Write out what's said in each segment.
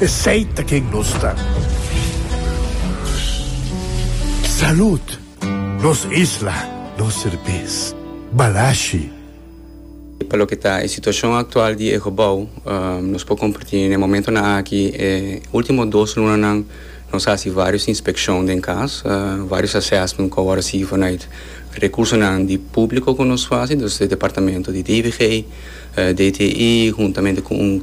Esey ta ken nos ta. Salud! Nos isla, nos serbes. Balashi. Pa loke ta e situacion actual di e gebou, nos por comparti n'e momentonan aki, e ultimo dos lunanan nos a haci varios inspeccion den cas, varios assessment cu awor a sigui vanuit recursonan di publico cu nos faci, dus di e departamento di DIVG, DTI, huntamente cu un.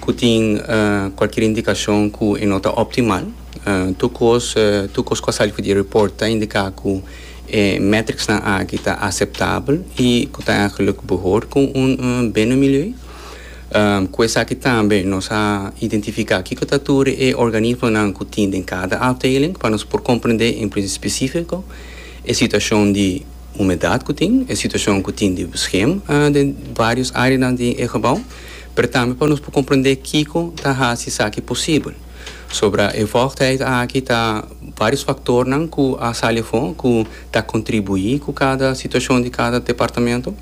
Ku tin kualkier indikashon ku e no ta optimal. Tur kos tur kos ku a sali ku di report ta indiká ku e metricsnan aki ta aseptabel i ku ta eigenlijk behor ku un bene milieu. Ku esaki tambe nos a identifiká kiko ta tur e organismonan ku tin den kada afdeling pa nos por komprendé en plis espesífiko e situashon di humedat ku tin, e situashon ku tin di beskem den varios áreanan di e gebou. pero tambe pa nos por comprende kico ta haci esaki posibel. Sombra e voogdheid aki ta varios factornan cu a sali afo cu ta contribui cu cada situacion di cada departamento,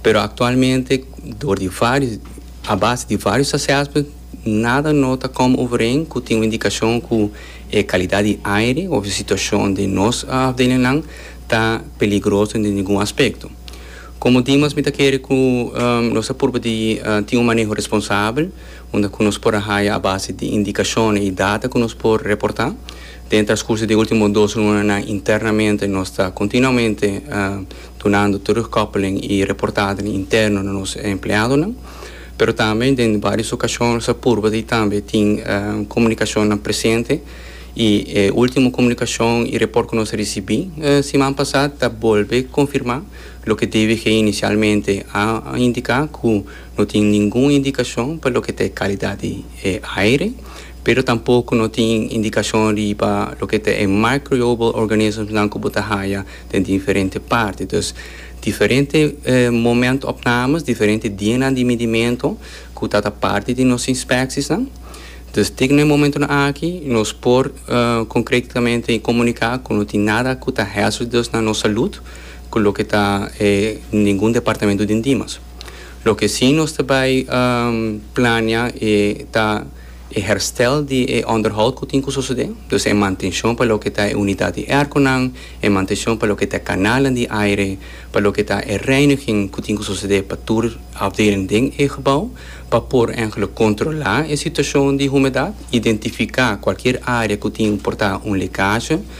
pero actualmente door di varios, a base di varios assessment nada no ta come overeen cu tin un indicacion cu e calidad di aire of e situacion di nos afdelingnan ta peligroso den ningun aspecto. Komo Dimas mi ta kere ku nos ta purba di tin un maneho responsabel unda ku nos por a haya a base di indikashonnan i data ku nos por reportá. Den e traskurso di e último dos lunanan internamente nos ta kontinuamente dunando terugkòppeling i reportadonan interno na nos empleadonan. Pero tambe den vários okashon nos a purba di tambe tin komunikashonnan presente i e último komunikashon i report ku nos a risibí siman pasá ta bolbe konfirmá Loke tvg inicialmente a indica cu no tin ningun indicacion pa loke ta e calidad di e aire, pero tampoco no tin indicacion riba loke ta e microbial organisms nan cu bo ta haya den diferente parti. Dus diferente moment opnames, diferente dianan di midimento cu ta ta parti di nos inspecties nan. Dus tin na e momentonan aki nos por concretamente comunica cu no tin nada cu ta hazardous na nos salud. cu loke ta e ningun departamento den Dimas. Loke si nos ta bay plania e ta e herstel di e onderhoud cu tin cu sosode, dus e mantencion pa loke ta e unidad di airconan, e mantencion pa loke ta e canalnan di aire, pa loke ta e reiniging cu tin cu sosode pa tur afdeling den e gebouw, pa por enkele controla e situacion di humedad, identifica cualkier area cu tin un porta un lecaje.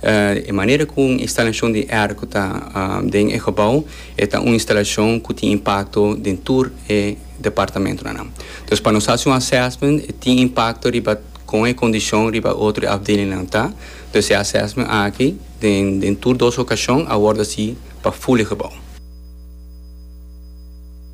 E manera ku un instalashon di air ku ta den e gebou e ta un instalashon ku tin impakto den tur e departamentunan nan. Dus pa nos hasi un assessment e tin impakto riba kon e kondishon riba e otro afdelingnan ta. Dus e assessment aki den tur dos okashon a wòrdu hasi pa full e gebou.